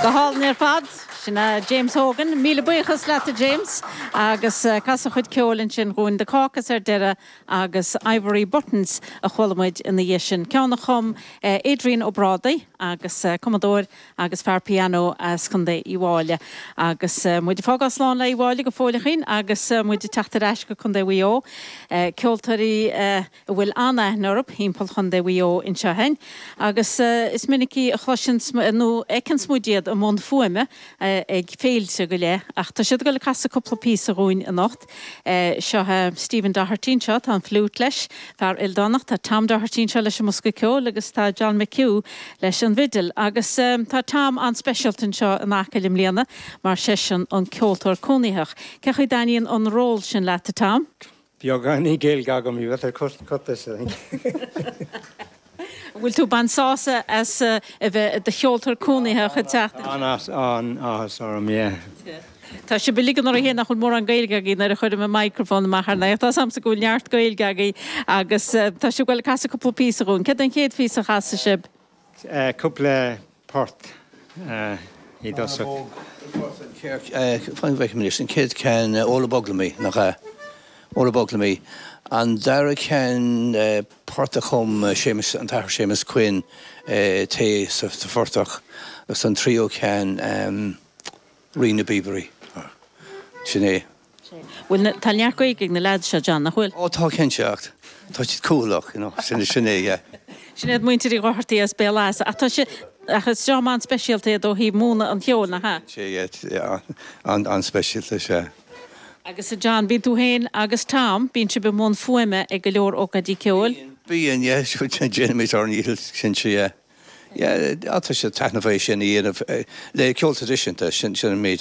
Go hálainn ar fad. Sin é James Hogan. Míle buíochas leat a James. Agus casadh a chuid ceoil ansin dhúinn, The Caucus ar deireadh agus Ivory Buttons a chuala muid ina dhiaidh sin, ceann a chum Adrian Ó Brádaigh agus cumadóir agus fear pianó as Contae Uíbh Fhailí. Agus muid ag fágáil slán le Uíbh Fhailí go fóilleachín agus muid ag teacht ar ais go Contae Mhaigh Eo, ceoltóirí. a bhfuil an-aithne orthub timpeall Chonndae Mhaigh Eo annseo againn, agus is minic a chloiseanns nó a fheiceanns muid iad i mbun fuaime ag féilte go leith, ach tá siad ag dul ag casadh cupla píosa dhúinn anocht. Seo é Stephen Doherty annseo, tá an fliúit leis, fear ildánach, tá Tom Doherty annseo leis an mbosca ceoil agus tá John McHugh leis an bhfidil, agus tá Tom an-speisialta annseo in Acaill i mbliana mar seisean an Ceoltóir Cónaitheach. Cé chaoi dtaithníonn an ról sin leat, a Tom? Beagáinín Gaeilge agam, you better cut cut this I think. An bhfuil tú ag baint sásamh as a bheith i do cheoltóir cónaitheach an tseachtain seo? An-as an-áthas orm, yeah. Tá sibh uilig ag ligean oraibh fhéin nach bhfuil mórán Gaeilge agaibh nuair a chuirim an microphone amach ar a n-aghaidh, ach tá 's a'msa go bhfuil neart Gaeilge agaibh agus tá sibh ag goil a casadh cúpla píosa dhúinn. Céard é an chéad phíosa a chasfaidh sibh? cúpla port i dtosach. Feicim anois, an chéad cheann, Óró Bog Liom Í, nach ea? Óró Bog Liom Í. An dara ceann, port a chum Séamus, an tAthair Séamus Quinn, Tae sa Phortach, agus an tríú ceann, Rí na bPíobairí. Sin é. Bhfuil na, tá neart Gaeilge ag na lads seo, John, nach bhfuil? Ó tá cinnte ach tá siad cúthalach, you know, sin, sin é, yeah. Sin iad muintir Uí Dhochartaigh as Béal Easa. Ach tá sé, ach is dream an-speisialta iad ó thaobh múineadh an cheoil, nach ea? Sin é, yeah, an-speisialta, sea. Agus a John, bíonn tú féin agus Tom, bíonn sibh i mbun fuaime ag go leor ócáidí ceoil? Bíonn, bíonn, yeah, déanaimid ár ndícheall, cinnte, yeah. Yeah, tá sé taitneamhach é sin a dhéanamh le ceol traidisiúnta, sin, sin an méid.